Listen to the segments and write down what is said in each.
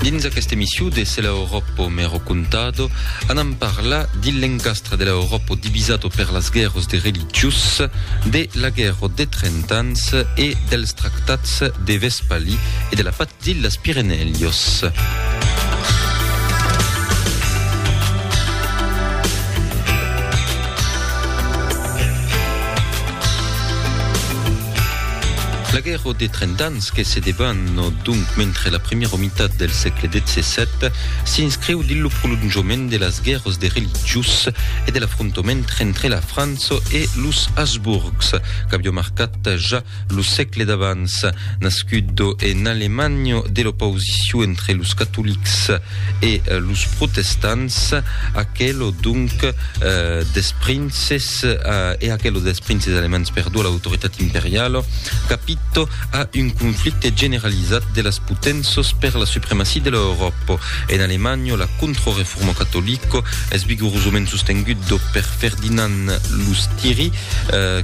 Dins aquesta emissió de Se l'Europo me ho contado, anam parlar de l'encastre de l'Europo divisado per las guèrras de religiós, de la guèrra de trent ans e dels tractats de Vespalí e de la patz d'illas Pirenèios. La guèrra de Trenta Ans que se debana donc mentre la primièra mitat del sègle xvii s'inscriu dins lo prolonjament de las guèrras de religiós e de l'afrontament entre la França e los Habsburgs qu'aviá marcat ja lo sègle d'abans. Nascut en Alemanha de l'opausicion entre los catolics e los protestants, aquela donc, dels princes, Se e aquelo dels princes alemands perdó l'autoritat imperiala, capito a un conflicte generalizat de las potenças per la supremacia de l'Euròpa. En Alemanha, la contra-reforma catolica es vigorosament sostenguda per Ferdinand Lustiri,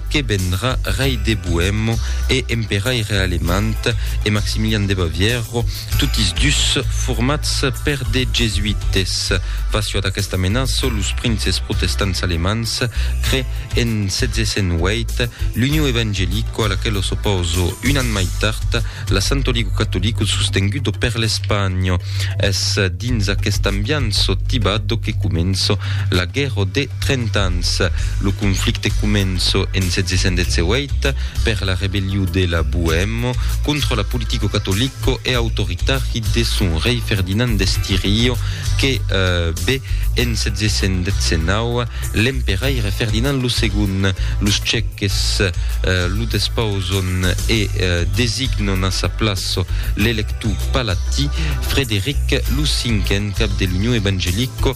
que vendrà rei de Boèma e emperaire alemand, e Maximilian de Bavièra, totis dus formats per de jesuites. Facio ad aquesta menaça, los princes protestants alemands cré en 1708 l'Union Evangelico a la qual s'opòso un an mai tard la Santo Ligo Catolico sostengudo per l'Espanha. Es dins aquest ambianço tibado que començo la guèrra de Trenta Ans. Lo conflicte començo en 1718, Per la rebelliu de la Boemo contra la politico catolico e autoritari de son rei Ferdinand d'Estirio que be en 719 l'emperaire Ferdinand lo Segond los Ceques lo despauson e designon a sa plaço l'electu palatí Frederic lo Cinquen cap de l'Union Evangelico